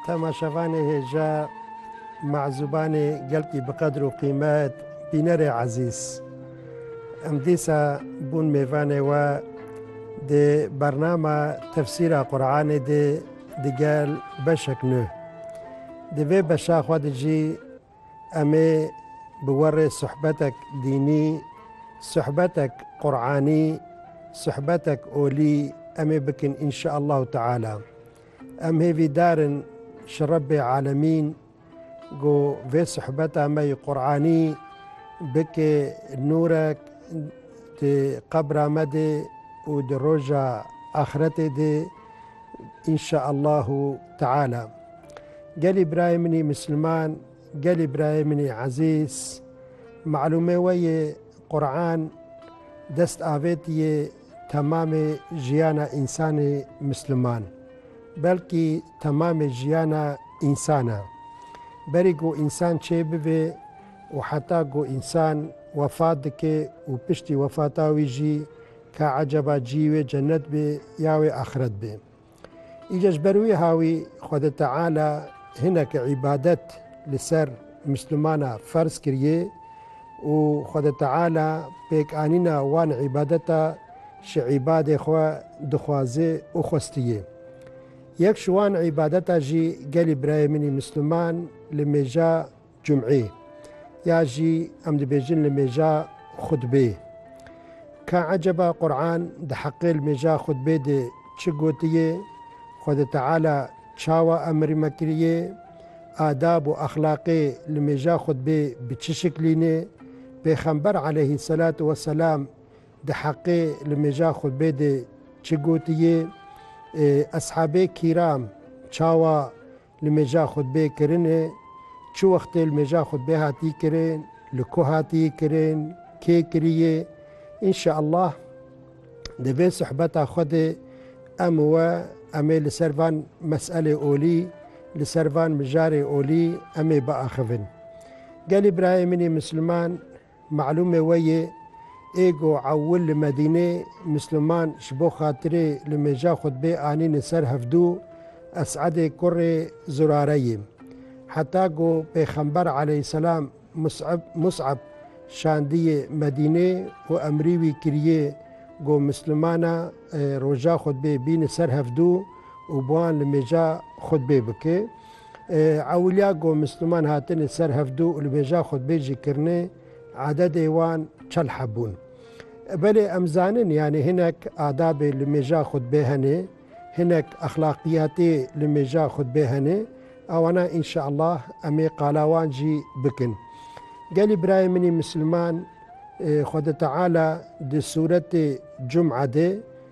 Temaşevanê hêja, mezûbanê gelkî bi qedr û qîmet, bînerê ezîz. Em dîsa bûn mêvanê we di bernama tefsîra Quranê de digel beşek nû. Di vê beşa xwe de jî Em ê bi we re sohbetek dînî, sohbetek Quranî, sohbetek olî em ê bikin înşeallahu teala. Em hêvî dar in ji Rebbê Alemîn ku vê sohbeta me yê Quranî bike nûrek di qebra me de û di roja axiretê de înşeallahu teala. Gelê birayê min ê Misliman, gelê birayê min ê Ezîz, malûmê we yê Quran dest avêt yê temamê jiyana însanê Misliman, belkî temamê jiyana însan e. Berî ku însan çêbibê û heta ku însan wefat dike û piştî wefata wî jî ka eceba cî wê cenet bê ya wê axiret bê. Îca ji ber wî hawî Xwedê Teala hinek îbadet li ser Mislimana ferz kiriyê û Xwedê Teala pêkanîna wan îbadeta ji îbadê xwe dixwaze û xwestiye. Yek ji wan îbadeta jî gelî birayê min ê Misliman li mêja Cum'ê, ya jî em dibêjin li mêja xutbê. Ka eceba Qur'an di heqê li mêja xutbê de çi gotiyê, Xwedê Teala çawa emir me kiriyê, adab û exlaqê li mêja xutbê bi çi şiklî ne, Pêxember aleyhîsselatu weselam di heqê li mêja xutbê de çi gotiyê, eshabê kîram çawa Li mêja xutbeyê kirinê, çi wextê li mêja xutbeyê hatî kirin, li ku hatî kirin, kê kirîyê. Înşeallah di vê suhbeta xwe de em û we em ê li ser van meselê olî, li ser van mijarê olî em ê biaxivin. Gelê birayê min ê Misliman Malûmê we yê ê ku ewil li Medînê Misliman ji bo xatirê li mêja xutbê anînin ser hevdû Es'edê kurê Zurare yê. Heta ku Pêxember aleyhîsselam Mus'eb Mus'ab şandiyê Medînê û emrî wî kiriyê ku Mislimana roja xutbê bînin ser hevdû û bi wan li mêja xutbê bike, Ewiliya ku Misliman hatine ser hevdu û li bêja xwe dibê jî kirine, adedê wan çel hebûn. Belê em zanin yanî hinek adabê li mêja xwe dibê hene, hinek exlaqiyatê li mêja xwe dibê hene, ewana înşeallah em ê qala wan jî bikin. Gelî birayê min ê Misliman, Xweda Teala di sûretê Cum'a de